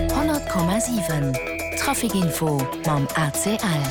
100,7 Traficinfo mam ACL.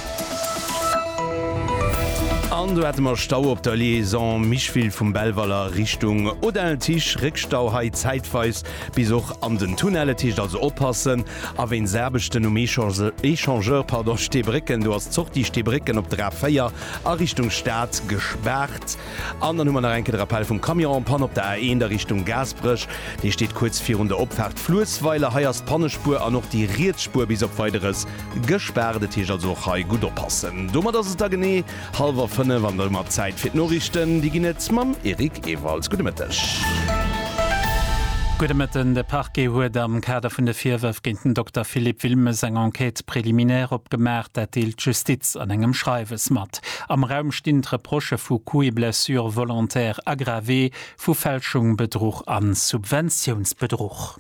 An do hate mer Stau op der Liaison Micheville vum Belval a Richtung Odell. Ticht Réckstau hei zäitweis bis och an den Tunnelle. Ticht also oppassen a wéinst Aarbechten um Échangeur, pardon, Steebrécken. Do ass d'Sortie Steebrécken op der A4 a Richtung Stad gespaart. An dann hu mer nach eng Kéier de Rappell vum Camion en panne op der A1 a Richtung Gaasperech. Dee steet kuerz virun der Opfaart Fluessweiler. Hei ass d'Pannespuer an och déi riets Spuer bis op Weideres gespaart. Et heescht also och hei gutt oppassen. Domat ass et da genee hallwer fënnef an domat Zäit fir d'Noriichten. Déi ginn et mam Eric Ewald. Gudde Mëtteg. Gudde Mëtten. De Parquet huet am Kader vun de Virwërf géint den Dokter Philippe Wilmes eng Enquête préliminaire opgemaach. Dat deelt d'Justiz an engem Schreiwes mat. Am Raum stinn d'Reprochë vu Coups et blessures volontaires aggravés, vu Fälschung, Bedruch a Subventiounsbedruch.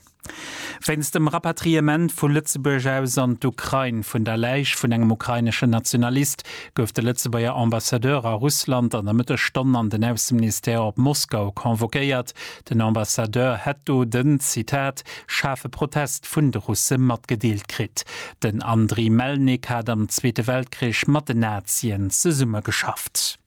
Wéinst dem Rapatriement vu Lëtzebuerg aus an d'Ukrain vun der Läich vun engem ukraineschen Nationalist gouf de Lëtzebuerger Ambassadeur a Russland an der Mëttesstonn an den Ausseministère op Moskau convoquéiert, Den Ambassadeur hätt do den, Zitat, schaarfe Protest vun de Russe matgedeelt kritt. Den Andriy Melnik hat am Zweete Weltkrich mat den Nazien zesummegeschafft.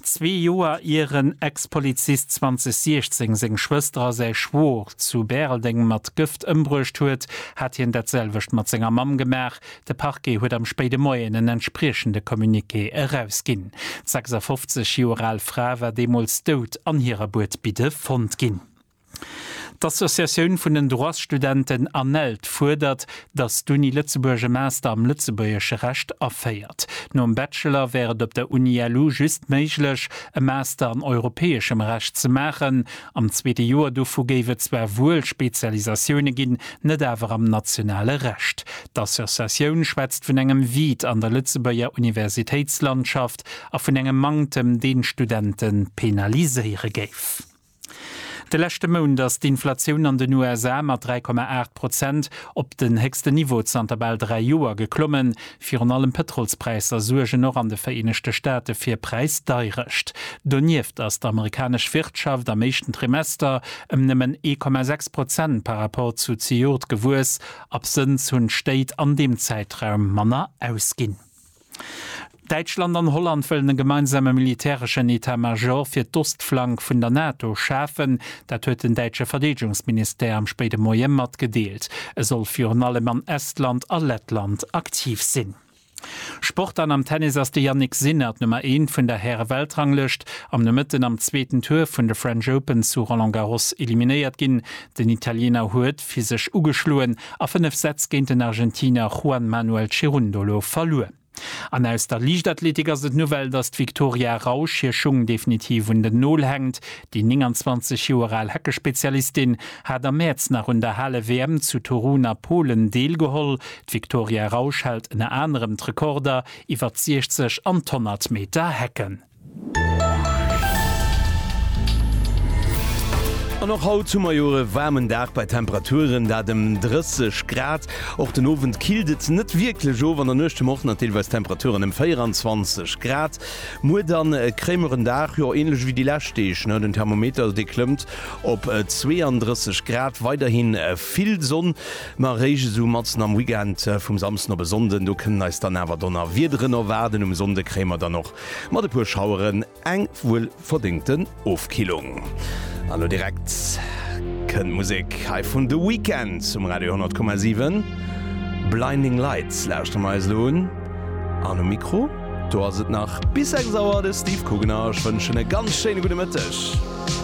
Zwee Joer ier en Ex-Polizist 2016 seng Schwëster a säi Schwoer zu Bäreldeng mat Gëft ëmbruecht huet, hat hien dat selwecht mat senger Mamm gemaach, De Parquet huet am spéide Moien en entspriechende Communiqué erausginn. D'sechsafofzeg Joer al Fra war deemools dout an hirer Buedbidde fonnt ginn. D'Associatioun vun den Droitsstudenten ANELD fuerdert, datt d'Uni Lëtzebuerg e Master am lëtzebuergesche Recht aféiert. Nom Bachelor wär et op der Uni-LU just méiglech, e Master an europäeschem Recht ze maachen, Am zweete Joer dovu géif et zwar wuel Spezialisatioune ginn, net awer am nationale Recht. D'Associatioun schwätzt vun engem Vide an der Lëtzebuerger Universitéitslandschaft a vun engem Manktem, deen d'Studente penaliséiere géif. De leschte Mount ass d'Inflatioun an den USA mat 3,8 Prozent op den héchsten Niveau zanter bal dräi Joer geklommen. Virun allem d'Pëtrolspräisser suergen och an de Vereenegte Staate fir Präisdeirecht. Donieft ass d'amerikanesch Wirtschaft am éischten Trimester ëm nëmmen 1,6 Prozent par Rapport zu zejoert gewuess. Absënns hunn d'Stéit an deem Zäitraum manner ausginn. Däitschland an Holland wëllen e gemeinsame militäreschen Etat-Major fir d'Ostflank vun der NATO schafen. Dat huet den däitsche Verdeedegungsministère am spéide Moie matgedeelt. E soll virun allem an Estland a Lettland aktiv sinn. Sport an am Tennis ass de Jannik Sinner d'Nummer eent vun der Häre-Weltranglëscht am Nomëtten am zweeten Tour vun de French Open zu Roland Garros eliminéiert ginn. Den Italiener huet physesch ugeschloen a fënnef Sätz géint den Argentiner Juan Manuel Cerundolo verluer. An aus der Liichtathletik ass et d'Nouvelle, datt d'Viktoria Rausch hir Schung definitiv un den Nol hänkt. Déi 29 Joer al Heckespezialistin hat am Mäerz nach un der Hale-WM zu Torun a Polen deelgeholl. D'Viktoria Rausch hält ënner anerem d'Rekorder iwwer d'Siechzeg an d'Honnertmeter-Hecken. An och haut hu mer jo e waarmen Dag bei Temperaturen dat ëm 30 Grad. Och den Owend killt et net wierklech of. An der Nuecht hu mer och nach deelweis Temperaturen ëm 24 Grad. Muer dann e kréimeren Dag, jo änlech ewéi déi lescht Deeg. Den Thermometer dee klëmmt op 32 Grad. Weiderhi vill Sonn, ma eréischt esou matzen am Weekend vum Samsden op e Sonnden, do kënnen eis dann awer Donnerwiederen erwaarden. Um Sonnde kréie mer dann och Mat e puer Schaueren eng wuel verdéngten Ofkillung. An lo direkt kënnt Musek hei vun The Weeknd um Radio 100,7. Blinding Lights lauschteren mer eis lo un. An um Mikro do ass et nach bis 6 Auer de Steve Kugener. Ech wënschen e ganz schéine gudde Mëtteg.